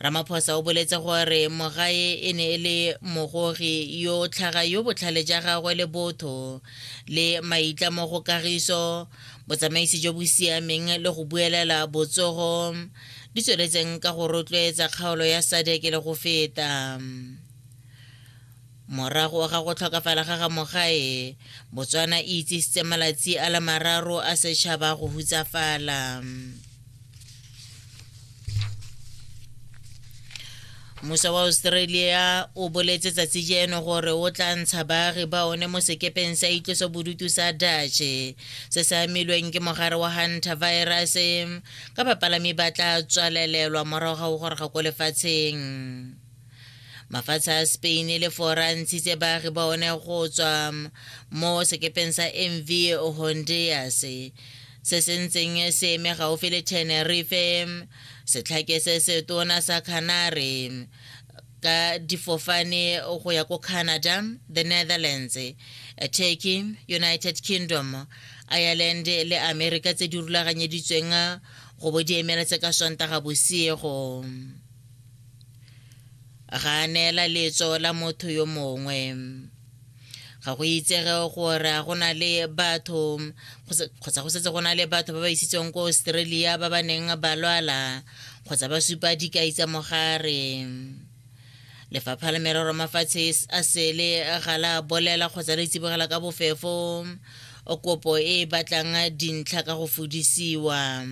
ramaphosa o boletse gore mogae e ne e le mogogi yo tlhaga yo botlhale ja gagwe le botho le maitla mo go kagiso botsamaisi jo bo siameng le go buelela botsogo di tsweletseng ka go rotloetsa kgaolo ya sadeke le go feta Morago ga go tlhokafala ga ga Mogae, Botswana e itsisitse malatsi a le mararo a setšhaba go hutsafala. mmuso wa australia o boletse tsatsi jeno gore o tla ntsha baagi ba one mo sekepeng sa itlosobodutu sa dutch se se amilweng ke mogare wa hunter virus ka bapalami ba tla tswalelelwa morago ga go goroga ko lefatsheng mafatshe a spain le forantsi tse baagi ba one go tswa mo sekepeng sa mv honduras se se ntseng se eme gaufi le tenerife setlhake se se tona sa canary ka difofane go ya ko canada the netherlands turkey united kingdom ireland le america tse di rulaganyeditsweng go bo di emela tse ka sontaga bosiego ga a neela letso la motho yo mongwe ga go itsege gore go na le batho kgotsa go setse go na le batho ba ba isitsweng ko australia ba ba neng ba lwala kgotsa ba supa dikai tsa mogare lefapha la merero mafatshe a sele ga la bolela kgotsa le tsibogela ka bofefo kopo e batlang dintlha ka go fodisiwa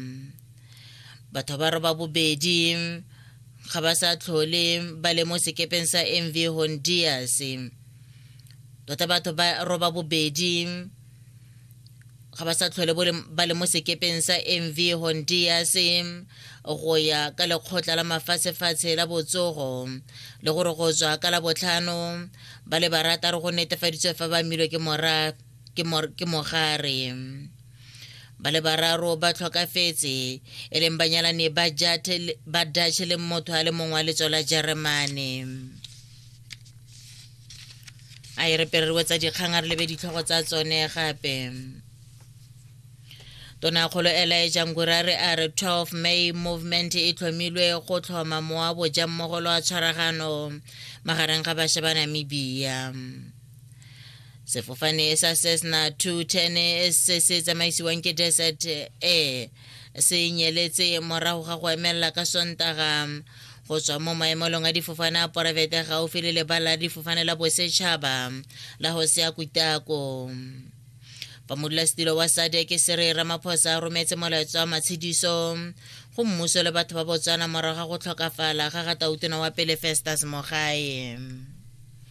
batho ba roba bobedi ga ba sa tlhole ba le mo sekepeng sa mv hondias tota batho ba roba bobedi ga ba sa tlhole ba le mo sekepeng sa mv hondias go ya ka lekgotla la mafatshefatshe la botsogo le gore go tswa ka la botlhano ba le barataro go netefaditswe fa ba milwe ke mogare ba le bararo ba tlhokafetse e leng banyalani ba dutch le motho a le mongwe wa letso la jeremane a e re pererwe tsa dikgang a re lebe ditlhogo tsa tsone gape tonakgolo elaeja ngurare a re 12 may movement e tlhomilwe go tlhoma mowa boja mmogo lwa tshwaragano magareng ga bašwa ba namibia sefofane sa cessna 210 se se tsamaisiwang ke desert air se nyeletse morago ga go emelela ka sontaga go tswa mo maemelong a difofane a poraefete gaufi le lebala la difofane la bosetšhaba la go se ya kutako fa modulasetilo wa sadeke se re ramaphosa a rometse molaetsa wa matshediso go mmuso le batho ba botswana morago ga go tlhokafala ga ga tautona wa pele festus mogae